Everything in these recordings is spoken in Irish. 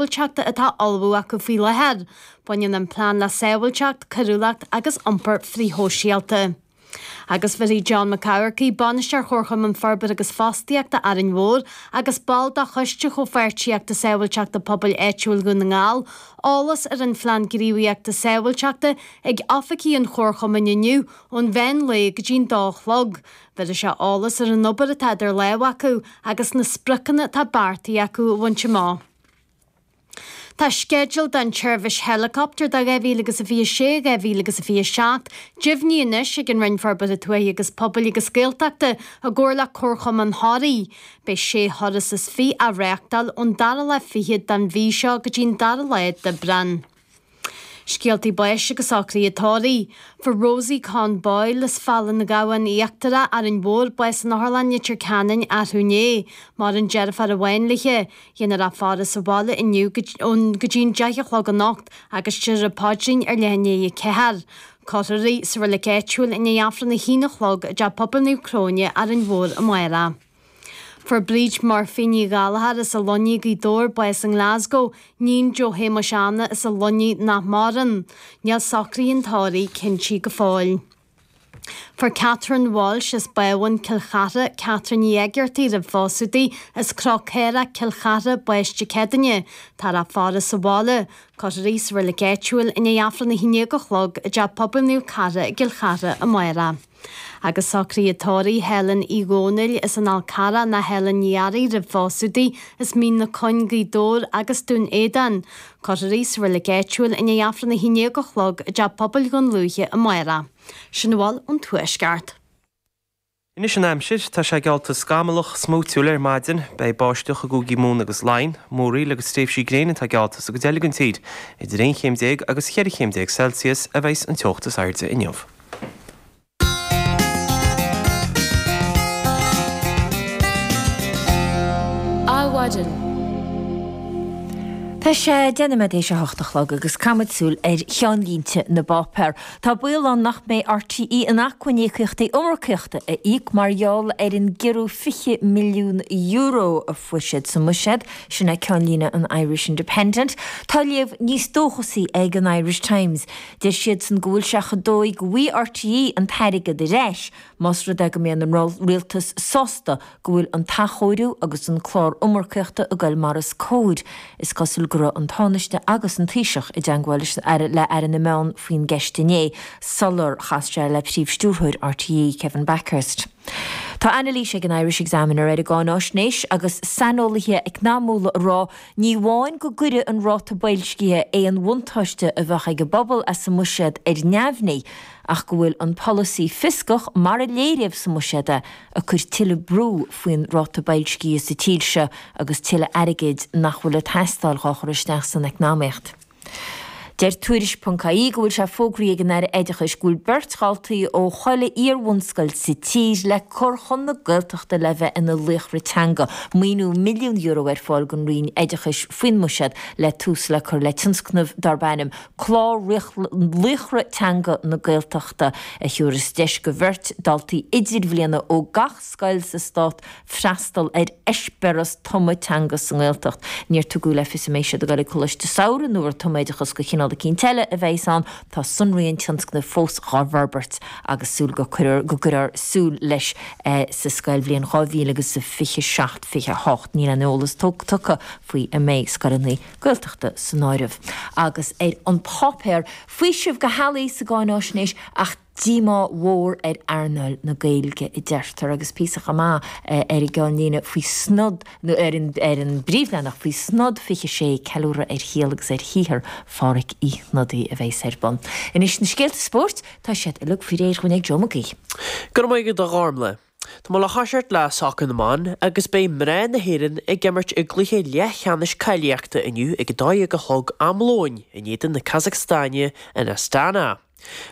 Sábháilteachta atá á ullmhú acu faoi láthair. Baineann an plean le sábháilteacht, coiriúlacht agus iompar frithshóisialta. Agus bhéarfaidh John McCafferty, Bainisteoir Chomharchumann Forbartha agus Fostaíochta, Árainn Mhór, agus ball de Choiste Chomhpháirtíochta Sábháilteachta Pobail Áitiúil Dhún na nGall, eolas ar an phlean gníomhaíochta sábháilteachta ag oifigí an Chomharchumainn inniu ón mheán lae go dtí an dó a chlog. Bhéarfaidh sé eolas ar an obair atá idir lámh acu agus na spriocanna atá beartaithe acu a bhaint amach. Tá sceideal don tseirbhís héileacaptair do 2026, 2027 deimhnithe anois ag an Roinn Forbartha Tuaithe agus Pobail agus Gaeltachta i gcomhar le Comharchumann Thoraí. Beidh sé thuras is fiche á reáchtáil ón dara lá fichead don mhí seo go dtí an dara lá d'Aibreán. Scéaltaí báis agus socraithe tórraimh. Fuair Rosie Conn Boyle as Fál an Ghabhann Íochtarach, Árainn Mhór, bás in Otharlann Leitir Ceanainn arú inné. Maireann deirfiúr amháin léithi. Déanfar a faire sa bhaile inniu go dtí an deich a chlog anocht agus déarfar an Paidrín ar leath i ndiaidh a 4. Cuirfear í sa reilig áitiúil i ndiaidh Aifreann a haon a chlog i dTeach Pobail Naomh Cróine, Árainn Mhór, amárach. Fuair Bríd Murphy Ní Ghallchóir as an Luinnigh, Gaoth Dobhair, bás i nGlasgow, níon Joe Shéamuis Anna as an Luinnigh nach maireann. Níl socraithe an tórraimh cinntithe go fóill. Fuair Catherine Walsh as Bábhún, Cill Chartha, Catherine Ní Éigeartaigh roimh phósadh di, as Cró Caorach, Cill Chartha, bás Dé Céadaoin. Táthar á faire sa bhaile. Cuirfear í sa reilig áitiúil i ndiaidh Aifreann a haon déag a chlog i dTeach Pobail Naomh Cartha i gCill Chartha, amárach. Agus socraithe tórraimh Helen Uí Dhónaill as an Fhál Charrach nó Helen Ní Fhearraigh roimh phósadh di as Mín na Cuinge, Gaoth Dobhair agus Dún Éideann. Cuirfear í sa reilig áitiúil i ndiaidh Aifreann a haon déag a chlog i dTeach Pobail Dhún Lúiche amárach. Sin a bhfuil ón Tuaisceart. Anois an aimsir, tá sé geallta scamallach, smúitiúil ar maidin. Beidh báisteach i gCúigí Mumhan agus Laighin, múraíl agus tréimhsí gréine atá geallta sa gcuid eile den tír. Idir aon chéim déag agus cheithre chéim déag Celsius a bheas an teocht is airde inniu. Adhmhaidin. Tá sé deich nóiméad tar éis a hocht a chlog agus caithfimid súil ar cheannlínte na bpáipéar. Tá baol ann nach mbeidh RTÉ in acmhainn íocaíochtaí iomarcaíochta a íoc mar gheall ar an gciorrú €20 milliún a fuair siad sa mbuiséad, sin é ceannlíne an Irish Independent. Tá léamh níos dóchasaí ag an Irish Times. Deir siadsan go bhfuil sé chomh dóigh go bhfaighidh RTÉ an t-airgead ar ais más rud é go mbeidh an Rialtas sásta go bhfuil an t-athchóiriú agus an clár iomarcaíochta ag gol mar is cóir. Is cosúil go raibh an Tánaiste agus an Taoiseach i dteangmháil le Aire na Meán faoin gceist inné sular chas sé le Príomhstiúrthóir RTÉ, Kevin Bakhurst. Tá anailís ag an Irish Examiner ar an gcáináisnéis agus saineolaithe eacnamíochta ag rá ní amháin go gcuirfidh an ráta boilscithe aon bhuntáiste a bheadh ag an bpobal as an mbuiséad ar neamhní ach go bhfuil an polasaí fioscach mar a léiríodh sa mbuiséad é ag cur tuilleadh brú faoin ráta boilscithe sa tír seo agus tuilleadh airgid nach bhfuil ag teastáil dhá chur isteach san eacnamaíocht. Deir Tuairisc ponc ie go bhfuil sé fógraí ag an Aire Oideachais go bhfuil beirt dhaltaí ó chuile iarbhunscoil sa tír le cur chun na Gaeltachta le bheith ina laochra teanga. Maoiniú milliún euro ar fáil gon Roinn Oideachais faoin mbuiséad le tús le cur le tionscnamh darb ainm Clár Laochra Teanga na Gaeltachta a thiúras deis go bheirt daltaí idirbhliana ó gach scoil sa stát freastal ar eispéaras tumadh teanga sa nGaeltacht. Níor tugadh le fios an mbeidh siad ag dul ag Coláiste Samhraidh nó ar tumoideachas go chineál eicínt eile a bheidhs ann. Tá sonraí an tionscnaimh fós dhá bhforbairt agus súil go gcuirfear tús leis sa scoilbhliain 2027, 28. Níl aon eolas tugtha faoi an mbeidh scoileanna Gaeltachta san áireamh agus ar an páipéar. Faoiseamh go healaí sa gcáináisnéis ach. díomá mhór ar earnáil na Gaeilge, a deirtear, agus píosa chomh maith ar an gclúdach faoi Snod, nó ar an bpríomhleathanach, faoi Snod 26, ceiliúradh ar shaol agus ar shaothar Phádhraic Uí Shnodaigh a bheas ar bun. Anois na scéalta spóirt, tá siad uilig faoi réir dhúinn ag Joe Mac Aoidh. Go raibh maith agat a Ghormlaith. Tá mé le toiseacht le Sacar na mBan agus beidh mná na hÉireann ag imirt i gcluiche leathcheannais cáilíochta inniu ag a dó dhéag a chlog am lóin in éadan na Casacstáine in Astana.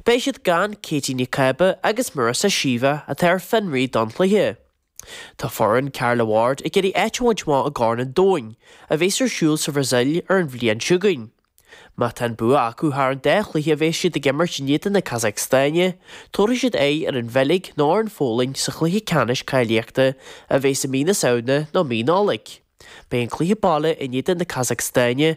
Beidh siad gan Katie McCabe agus Marissa Sheva atá ar fionraí don chluiche. Tá foireann Carla Ward ag iarraidh áit a bhaint amach i gCorn an Domhain, a bheas ar siúl sa Bhrasaíl ar an bhliain seo chugainn. Má tá an bua acu thar an dá chluiche a bheas siad ag imirt in éadan na Casacstáine, tabharfaidh siad aghaidh ar an Bheilg nó ar an Pholainn sa chluiche ceannais cáilíochta a bheas i mí na Samhna nó mí Nollaig. Beidh an cluiche baile in éadan na Casacstáine